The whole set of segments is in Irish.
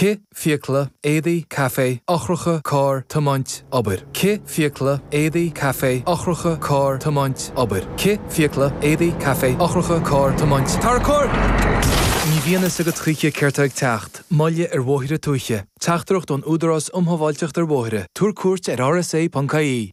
Cith, fiacla, éadaí, caife, eochracha, carr, tiomáint, obair. Cith, fiacla, éadaí, caife, eochracha, carr, tiomáint, obair. Cith, fiacla, éadaí, caife, eochracha, carr, tiomáint, tarracóir! Ní bhíonn a fhios agat choíche céard tá ag teacht, moilligh ar bhóithre tuaithe, teachtaireacht ón Údarás Um Shábháilteacht ar Bhóithre, tabhair cuairt ar rsa.ie.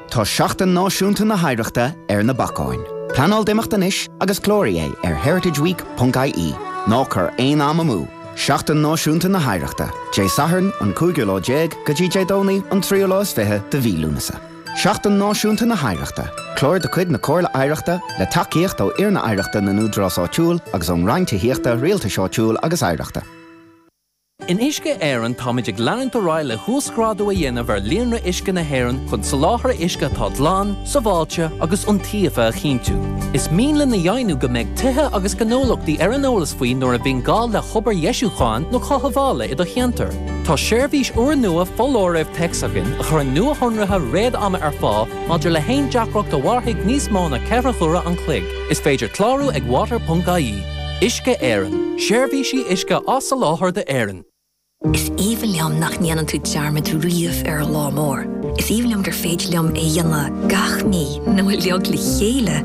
Tá Seachtain Náisiúnta na hOidhreachta ar na bacáin. Pleanáil d'imeacht anois agus cláraigh é ar heritageweek.ie. Ná cuir aon am amú! Seachtain Náisiúnta na hOidhreachta, Dé Sathairn an cúigiú lá déag go dtí Dé Domhnaigh an tríú lá is fiche de mhí Lúnasa. Seachtain Náisiúnta na hOidhreachta, Clár de chuid na Comhairle Oidhreachta, le tacaíocht ó Fhoirne Oidhreachta na nÚdarás Áitiúil agus ón Roinn Tithíochta, Rialtais Áitiúil agus Oidhreachta. In Uisce Éireann táimid ag leanúint ar aghaidh le huasghrádú a dhéanamh ar líonra uisce na hÉireann chun soláthar uisce atá glan, sábháilte agus iontaofa a chinntiú. Is mian linn a dheimhniú go mbeidh tithe agus gnólachtaí ar an eolas faoi nuair a bhíonn gá le hobair dheisiúcháin nó chothabhála i do cheantar. Tá seirbhís úrnua foláirimh téacs againn a chuireann nuashonruithe réad-ama ar fáil maidir le haon deacracht a mhairfidh níos mó ná ceithre huaire an chloig. Is féidir clárú ag water.ie. Uisce Éireann, Seirbhísí uisce á soláthar d'Éirinn. Is aoibhinn liom nach ndéanann tú dearmad riamh ar an lá mór. Is aoibhinn liom gur féidir liom é dhéanamh gach mí nó uilig le chéile,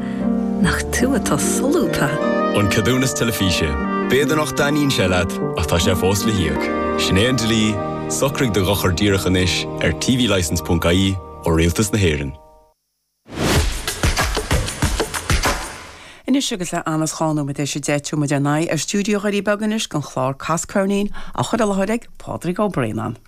nach tú atá solúbtha? An Ceadúnas Teilifíse, B'fhéidir nach dtaitníonn sé leat ach tá sé fós le híoc. Sin é an dlí, socraigh do dhochar díreach anois ar tvlicence.ie ó Rialtas na hÉireann. Anois agus an t-am ag sé nóiméad tar éis a deich tabharfaidh muid ár n-aghaidh ar stiúideo Dhoirí Beaga anois don chlár Cas Ceirnín, á chur i láthair ag Pádraig Ó Braonáin.